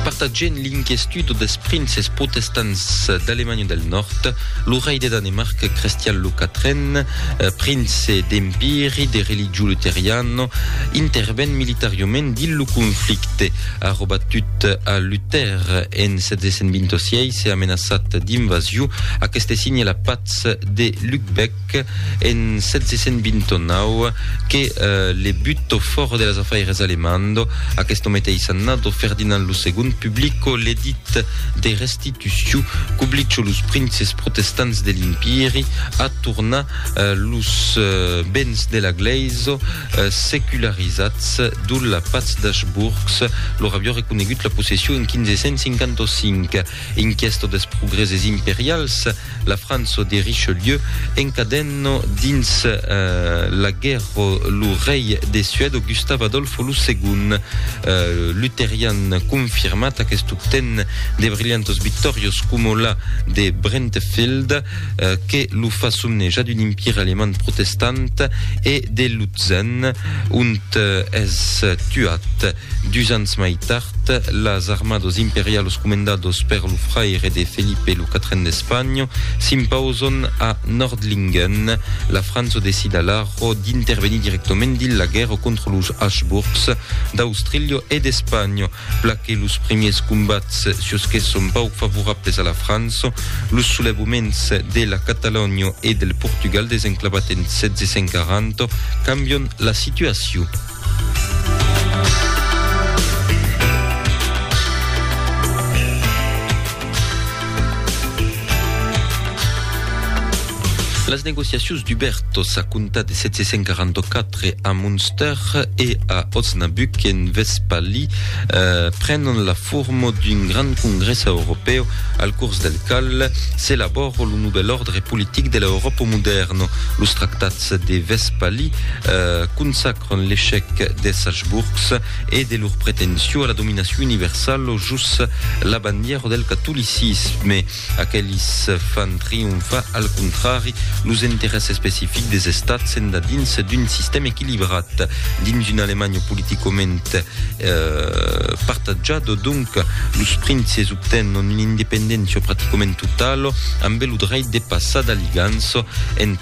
Partatgent l'inquiestudo des princes protestants d'Alemanha del Nòrd, lo rei de Danemarc Crestian lo Quatren, prince d'Empiri de religion luteriano, interven militariament dins lo conflicte, a robat tut a Luther en 726 e amenaçat d'invasion, aqueste signe la patz de Lübeck, Marc, en 1729, que le butto fòro de las afaires alemando, aquesto meteis annado Ferdinand lo Segond publico l'edit de restituciu qu'oblicho los princes protestants de l'Impieri a tornar los bens de la glaiso secularizats dol la patz d'Achbourgs lor avió reconegut la possession en 1555. Inquiesto des progrèses imperials, la França de Richelieu encadenò dins la guèrra lo rei de Suède Gustave Adolphe lo Segond. Lutherian confirmat, aquest obten de brilhantas victòrias coma la de Brentefield que lo fa somnejar d'un empire alemand protestant e de Lutzen ont es tuat. Dus ans mai tard, las armados imperialos comendados per lo fraire de Felipe lo Quatren d'Espanha s'impauson a Nördlingen. La França decida alara d'intervenir directament dins la guèrra contra los Habsburgs d'Austrília e d'Espanha. Pla que los primiers combats sus que son pauc favorables a la França, los solevaments de la Catalonha e del Portugal desenclavat en 1740 cambion la situacion. Las negociacions d'Hubertos a comptar de 744 a Munster e a Osnabrück en Vestpalie eh, prenon la forma d'un grand congrès europeu al curs del cal s'elabora lo nouvel ordre politic de l'Europa moderna. Los tractats Pòrtas de Vespalí consacran l'echec des Habsburgs e de lor pretension a la dominacion universal o jos la bandièra del catolicisme. Aquelis fan trionfar al contrari los interès especifics des estats endadins d'un sistèm equilibrat dins una Alemanha politicament partatjada. Donc, los princes obtenon una independéncia praticament totala ambe lo dreit de passar d'aligança entre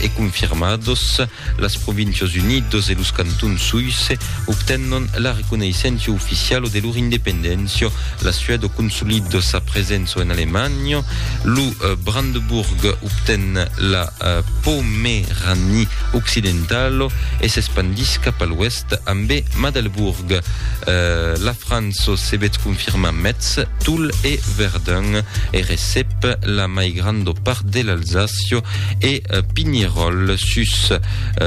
e confirmados, las Provincias Unidos e los Cantons Suisses obtennon la reconeissença oficiala de lor independéncia, la Suèda consolida sa presença en Alemanha, lo Brandebourg obten la Pomeranie occidentala e s'espandís cap a l'oèst. Brest ambé Madelburg. La França se vet confirmar Metz, Toul e Verdun e recep la mai granda part de l'Alsacia e Pineròl. Sus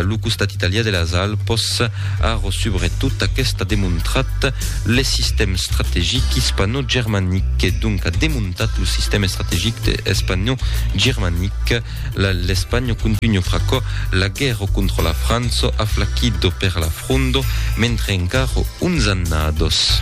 lo costat italià de las Alpas, ara subretot aqueste a demontrat le sistèm strategic ispanò-germanic e donc a demontat lo sistèm estrategic espanò-germanic. L'Espanha contunha pr'aquò la guèrra contra la França aflaquido per l'afrondo mentre encara uns annados.